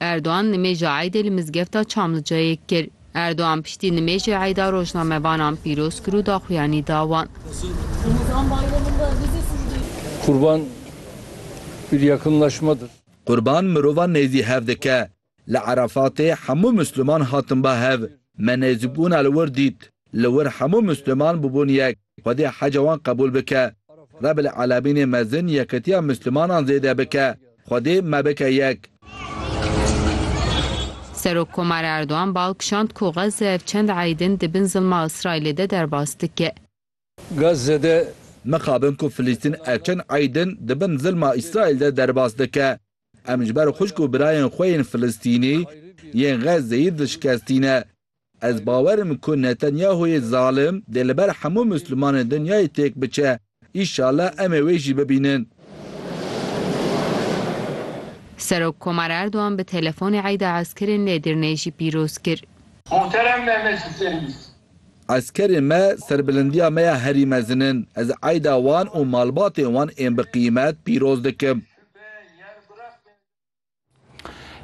Erdogan nimêja eydê li mizgefta Çamliceyê kir. Erdogan piştî nimêjê eyda rojnamevanan pîroz kir û daxuyanî da wan. Kurban bir yakınlaşmadır. Qurban mirovan nêzî hev dike. Li Erefatê hemû Misliman hatin ba hev. Me nêzîbûna li wir dît. Li wir hemû Misliman bûbûn yek. Xwedê heca wan qebûl bike. Rebil Alemînê mezin yekitiya Mislimanan zêde bike. Xwedê me bike yek. Serok Komar Erdogan bal kişand ku Gaza ev çend ey din di bin zilma Îsraîlê de derbas dike. Gaza de. Mixabin ku Filistîn ev çend ey din di bin zilma Îsraîl de derbas dike. Em ji ber xwişk û birayên xwe yên Filistînî yên Xezzeyê dişkestî ne. Ez bawerim ku Netanyahoyê zalim dê li ber hemû Mislimanên dinyayê têk biçe. Înşala em ê wê jî bibînin. Serok Komar Erdogan bi telefonê Eyda Eskerên Nêdirnê jî pîroz kir. Muhterem Mehmetçî Serwîs. Eskerên me serbilindiya me ya herî mezin in. Ez Eyda wan û malbatên wan ên bi qîmet pîroz dikim.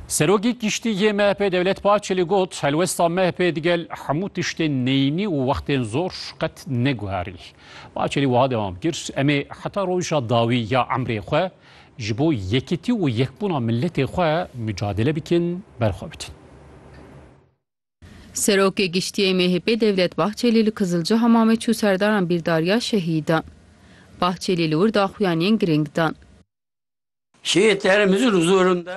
Serokê Kiştî yê MHP'ê Dewlet Bahçelî got, Helwesta MHP'ê digel hemû tiştên neyînî û wextên zor qet neguherî. Bahçelî wiha dewam kir, Em ê heta roja dawî ya emrê xwe ji bo yekitî û yekbûna miletê xwe micadele bikin, berxwe bidin. Serokê Giştî yê MHP'ê Devlet Bahçelî li Kizilci Hamamê çû serdaran bîrdariya şehîdan. Bahçelî li wir daxuyaniyên girîng dan.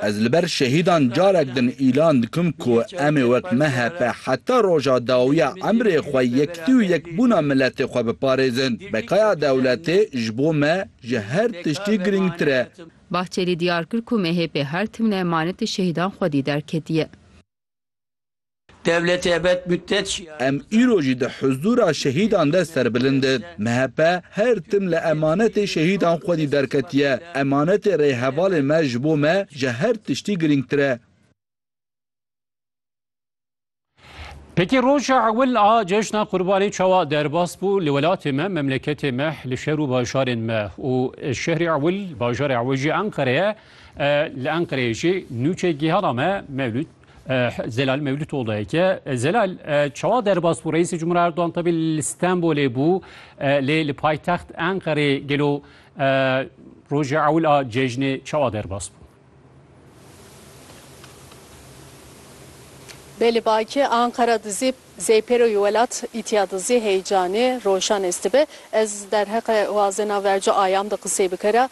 Ez li ber şehîdan carek din îlan dikim ku em ê wek MHP heta roja dawiya emrê xwe yektî û yekbûna miletê xwe biparêzin. Bekaya dewletê ji bo me ji her tiştî girîngtir e. Bahçelî diyar kir ku MHP her timne emanetê şehîdan xwedî derketiye. Em îro jî di huzûra şehîdan de serbilind in. MHP her tim li emanetê şehîdan xwedî derketiye. Emanetê rêhevalên me ji bo me ji her tiştî girîngtir e. Pêkê roja ewil a cejna qurbanê çawa derbas bû li welatê me, memleketê me, li şer û bajarên me û şehrê ewil, bajarê ewil jî Enqereye Li Enqereyê jî nûçe gihana me Mewlûd Zelal Mewlûd Oldayeke. Zelal çawa derbas bû Reîsê Cumhuriyê Erdogan tabi li Stenbolê bû lê li paytext Enqerê gelo rojê ewil a cejnê çawa derbas bû? Belê Baki, Anqera dizî zêpêro yê welat, îtîya dizî heycanê, roşan estibe. Ez derheqê wazena verco ayam de qisey bikera.